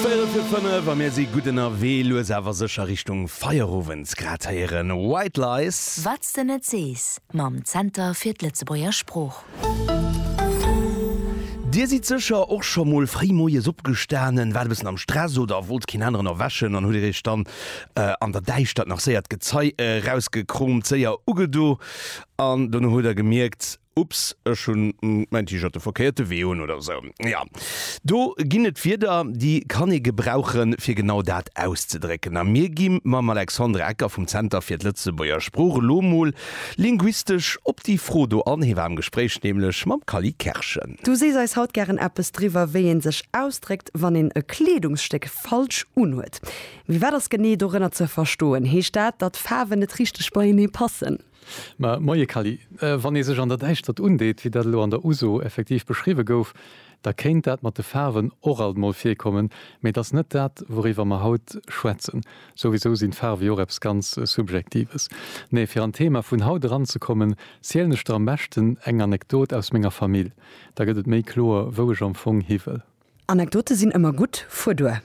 Véierel fir 5 a mir si gutt ënnerwee, lues awer sécher Richtung Feierowend. Grad héieren White Lies. Wat s de net sees mam Zenter fir d'Lëtzebuerger Sprooch. Dir sidd sécher och scho mol fréi moies opgestanen, waart e bëssen am Stress oder wollt keen aneren erwächen an hutt Dir Iech dann an der Däischtert nach séier d'Gezei erausgekroomt, séier ugedo an dono hutt Der gemierkt, Ups, ech hunn mäin T-Shirt de verkéierte Wee un oder esou. Jo, do ginn et Wierder, déi kann ee gebrauchen, fir genau dat auszedrécken. A mir gi mam Alexandre Ecker vum Zenter fir d'Lëtzebuerger Sprooch elo mol linguistesch op déi Fro do an. Hie war am Gespréich nämlech mam Kally Kerschen. Du sees eis haut gären eppes driwwer, wéi ee sech ausdréckt, wann een e Kleedungsstéck falsch unhuet. Mee wat ass genee dorënner ze verstoen? Heescht dat, datt Faarwen net richteg beienee passen? Mä, Moie Kally, wann ee sech an der Däischtert undeet, wéi dat elo an der Uso effektiv beschriwwe gouf, da kéint dat mat de Faarwen och alt emol virkommen, mee et ass net dat, wouriwwer mer haut schwätzen. Souwisou sinn d'Faarw jo och eppes ganz Subjektives. Nee, fir an d'Thema vun haut eranzekommen, zielen ech der am beschten eng Anekdot aus menger Famill, da gëtt et méi kloer, wou ech am Fong hiwëll. Anekdote sinn ëmmer gutt, fuer duer!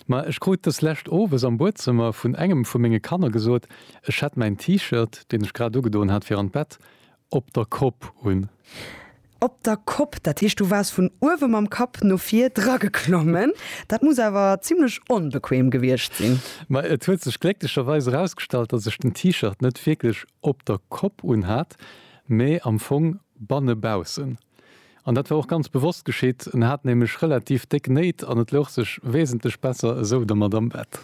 Ma ech krut des lescht owes am Buedzëmmer vun engem vu menge Kanner gesot, ech hätt mäin T-Shirt, deen ech grad ugedoen hat fir an d'Bett, op der Kopp un. Op der Kopp, dat heescht du waars vun uewe mam Kapp no vir drageklommen. Dat muss awer zimlech onbequem gewiescht sinn. Ma et huet sech glécklecherweis erausgestallt, datt ech den T-Shirt net wierklech op der Kopp unhat, mee am Fong bannebaussen. An dat war och ganz bewosst geschitt, en hat nämlech relativ déck Néit an et louch sech wesentlech besser esou dermat am Bett.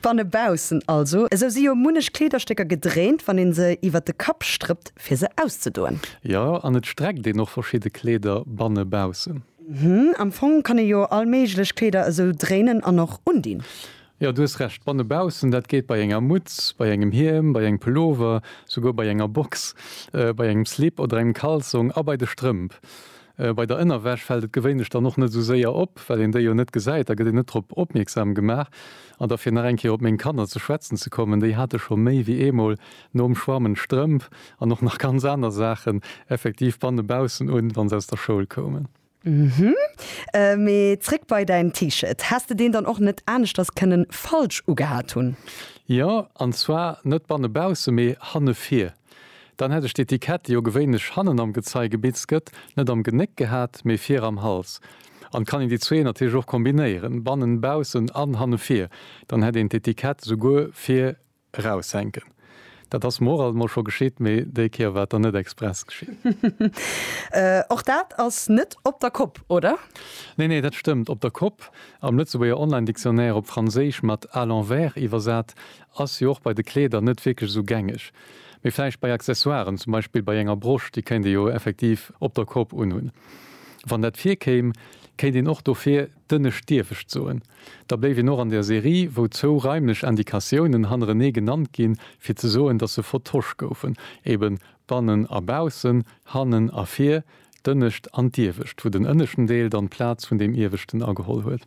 Banne baussen also. Esou si jo munnech Kleederstécker gedréint, wann ee se iwwert de Kapp strëppt, fir se auszedoen. Jo, an et streckt een och verschidde Kleeder banne baussen. Am Fong kann ee jo all méiglech Kleeder esou dréinen an och undinn. Jo, du hues Recht, banne baussen, dat geet bei enger Mutz, bei engem Hiem, bei engem Pullover, souguer bei enger Box, bei engem Slip oder engem Kalsong a bei de Strëmp. Bei der Ënnerwäsch fält et gewéinlech dann och net esou séier op, well een déi jo net gesäit, da gëtt een net drop opmierksam gemaach. An da fir nach eng Kéier op meng Kanner ze schwätzen ze kommen, déi hate scho méi wéi eemol nom Schwammen d'Strëmp an och nach ganz aner Saachen effektiv banne baussen un, wa se aus der Schoul koumen. Hm, mee zréck bei däin T-Shirt. Häss de deen dann och net aneschters kënnen falsch ugehat hunn? Jo, an zwar net banne bausse, mee hanne vir. Dann hätt ech d'Etikett, déi jo gewéinlech hannen am Gezei gebitzt gëtt, net am Genéck gehat, mee vir am Hals. An kann een déi zwee natierlech och kombinéieren, bannen baussen an hanne vir, dann hätt een d'Etikett souguer vir Eraussenken. Dat ass mer och alt mol scho geschitt, mee déi Kéier war et dann net express geschitt. Och dat ass net op der Kopp, oder? Nee, nee, dat stëmmt. Op der Kopp, am Lëtzebuerger Online-Dictionnaire op Franséisch mat à l'envers iwwersat, ass jo och bei de Kleeder net wierklech esou gängeg. Mee vläicht bei Accessoiren, zum Beispill bei enger Brosch, déi kéint ee jo effektiv op der Kopp unhunn. Wann dat virkéim, kéint een och dofir Dënnescht dierf ech d'soen. Da bléif een och an der Serie, wou zwou raimlech Indikatiounen hannerenee genannt ginn, fir ze soen, dass se vertosch goufen, ebe bannen a baussen, hannen a vir, d'ënnescht an d'iewescht, wou den ënneschten Deel dann d'Plaz vun deem ieweschten ageholl huet.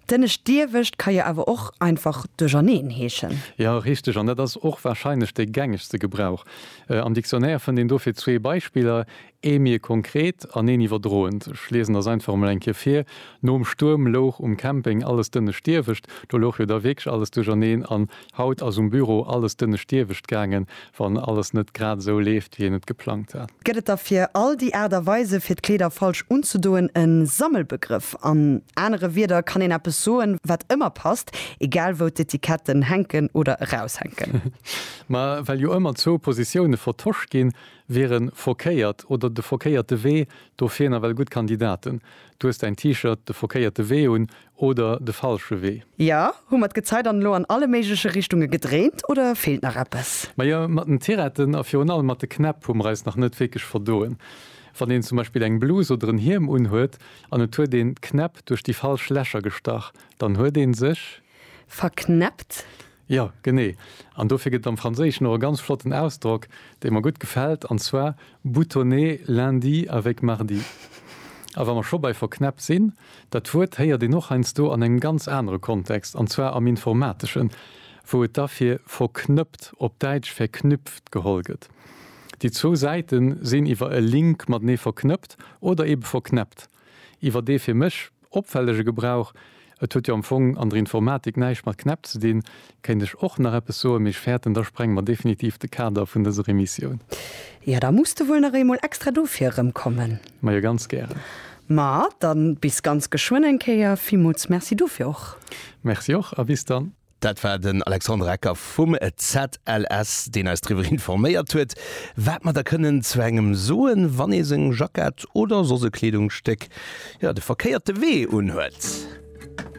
D'ënnescht d'iewescht ka jo awer och einfach duercherneen heeschen. Jo, richteg. An dat ass och warscheinlech dee gängegste Gebrauch. Am Dictionnaire fënnt een dofir zwee Beispiller, Ee méi e konkret an een iwwerdroend. Ech liesen der Saintform mol eng Kéier vir, Nom Stuerm louch um Camping alles dënnescht Diewecht. Do louch jo da wierklech alles duercherneen. An haut ass um Büro alles dënnescht Diewecht gaangen, wann alles net grad esou leeft, wéi een et geplangt hat. Gëtt et da fir all déi Aart a Weise, fir d'Kleeder falsch unzedoen, e Sammelbegrëff? An anere Wierder kann een eppes soen, wat ëmmer passt, egal wou d'Etiketten hänken oder eraushänken. Ma well jo ëmmer zwou Positioune vertosch ginn, Wieren verkéiert oder de verkéierte Wee dofir nawell gutt Kandidaten? Du hues däin T-Shirt de verkéierte Wee un oder de falsche Wee? Ja, hu mer d'Gezei dann elo an alle méigleche Richtunge gedréint oder feelt nach eppes? Majo, mat den Tiretten a virun allem mat de Knäpp hu mer eis nach net wierklech verdoen. Wann een zum Beispill eng Blus oder en Hiem unhuet an et huet een d'Knäpp duerch déi falsch Lächer gestach, dann huet ee sech. Verknäppt? Jo, genee. An dofir gëtt et am Franséischen och e ganz flotten Ausdrock, dee mer gutt gefält, an zwar boutonner lundi avec mardi. A wa mer scho bei verknäppt sinn, dat Wuert héiert een och heiansdo an engem ganz anere Kontext, an zwar am Informateschen, wou et da fir verknëppt, op Däitsch verknüpft, geholl gëtt. Déi zwou Säite sinn iwwer e Link matenee verknëppt oder ebe verknäppt iwwer dee fir mech, Opfällege Gebrauch, Et huet jo am Fong an der Informatik näischt mat Knäpp ze dinn, kéint ech och nach eppes soen, mee ech fäerten, da sprenge mer definitiv de Kader vun dëser Emissioun. Jo, da muss de wuel nach eemol extra dofir erëmkommen. Majo, ganz gären. Ma dann bis ganz geschwënn eng Kéier. Villmools Merci dofir och. Merci och a bis dann. Dat war den Alexandre Ecker vum ZLS, deen eis driwwer informéiert huet, wat mer da kënnen zu engem soen, wann ee seng Jackett oder soss e Kleedungsstéck, jo, de verkéierte Wee unhuet.